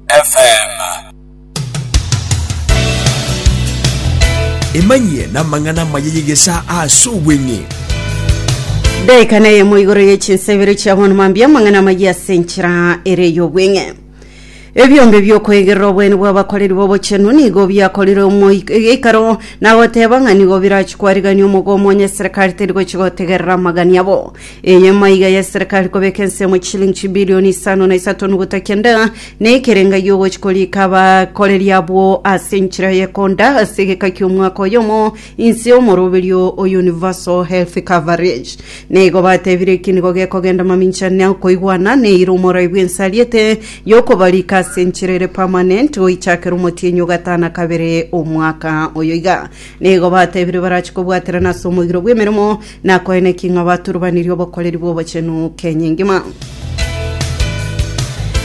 FM. Emanyie namang'ana amaya y'egesaa ase obweng'e. Daika na eyemo igoro ye chinsa ibere chia bono mambia amang'ana amaya ase enchera ere y'obweng'e ebiombe biokoegerera obwene bw'abakoreri b'obochenu nigo biakorire omoik- egeikaro nagoteba ng'a nigo birachikwarigania omogomo onye serikali teri gochi gotegerera amagani abo Enyama iga y'eserekari kobeka ensemo chilingi chibilioni isano na isato nuguta kenda, na ekerenga y'ogochi korika abakoreri abwo ase enchera y'ekonda ase egeka ki'omwaka oyomo inse y'omoroberio o Universal Health Coverage. Na igo batebire eki nigo gekogenda mamincha na okoigwana na eira omorai bw'ense ariete y'okobarika ase enchera ere permanent goichakera omotienyi ogatana kabere omwaka oyo iga. Na igo batebire barache kobwaterana ase omogiro bw'emeremo Na koine ki ng'a baturbanirie obokoreri bw'obochenu kenya engima?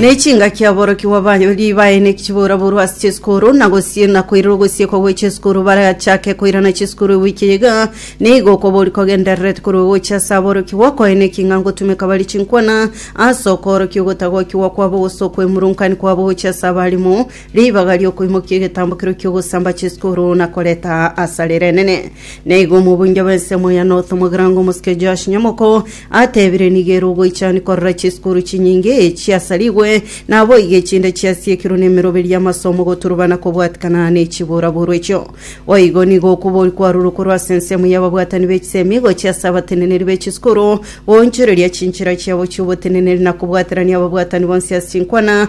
Ne chingaki aborokigwa banyori baene chiboraborwe ase chisukuru na gosiena koirerwa gosiekwa gwe chisukuru barachake koirana chisukuru ewiki eye iga nigo okobori kogendererete korwa gocha ase aborokigwa koine ki ng'a ngotumeka barie chinkwana ase okoorokia ogotagokigwa kwabo gose okwemurunkaini kwabo gocha ase abarimu Ribaga ri'okoimokia egetambo keria ki'ogosamba chiskuru na koreta asare renene. Na igo omobunja bw'ensemo ya North omogirango omosike Joash Nyamoko atebire nigo ere ogoichani korora chiskuru chinyinge chiasarigwe, na aboigo echinde chiasiekirwe n'emeroberi y'amasomo goturubana kobwatikana nechibura-buru echio. Boigo nigo okobori kwarurwe korwa ase ensemo y'ababwatani b'echisemi gochia ase abateneneri b'echiskuru goonchoreria chinchera chiabo chi'oboteneneri na kobwaterania ababwatani bonsi ase chinkwana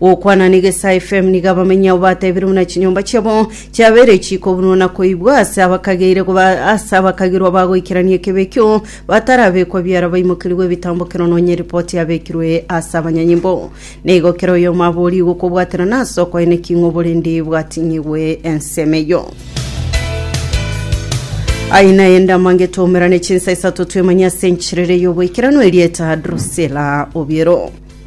Gokwana na Egesae FM nigo abamenyi abo batebirwe buna chinyomba chiabo chiabeire chikobunwa na koibwa ase abakageire goba- ase abakagirwa bagoikerania ekebe ekio batarabekwa biara baimokerigwe ebitambo kero nonye ripoti yabekirwe ase abanyanyimbo. Na igo kera oyomo aborie igokobwaterana ase okoyene ki ng'o borende bwatinyigwe ensemo eyio. Aye naye ndamange twaumerane chinsa isato twemanye ase enchirere y'oboikeranu erieta Drusilla Obiero.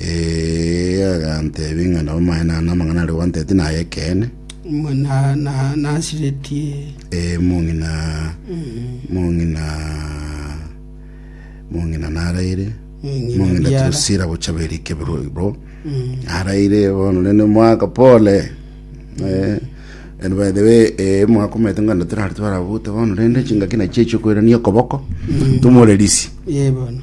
Ee, aganteebia ng'a nabo amaene aa namang'ana aria gwanteetie nay'ekeene. Mwa- na- na- nasiretie Ee, mong'ina, mong'ina, mong'ina naraire, Mong'ina mong'ina biara. tirosira bocha berike biroibo, naraire bono nene mwaka pole. Eh, and by the way, eh, mwaka omanyete ng'a natirari twarabute bono rende chingaki nachio echiokoirania okoboko, tumore risi. ye bono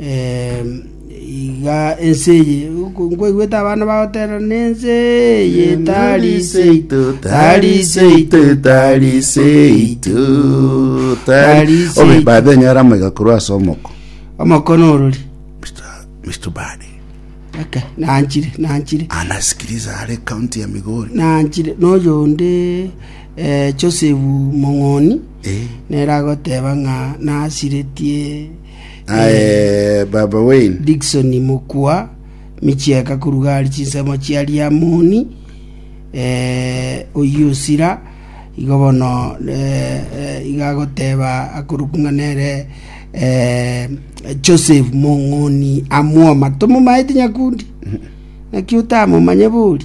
Em, iga ense eye Nko- nkoigwete abana bagoterera nense eye tariseitu tariseitu tariseitu Tariseitu. obe babe nyora moiga korwa ase omoko omokono orori mr bade eke nanchire nanchire anasikiriza are county ya migori nanchire noyo onde eh, joseph mong'oni eh neragoteba ng'a nasiretie Aye Baba Wayne. Dickson mokwa michieka koruga aria chinsemo chia Riamoni eh, oyio osira igo bono eh, eh, iga agoteba akorokwa ng'a nere eh, Joseph Mong'oni amwoma tomomaete nyakundi naki otamomanye bori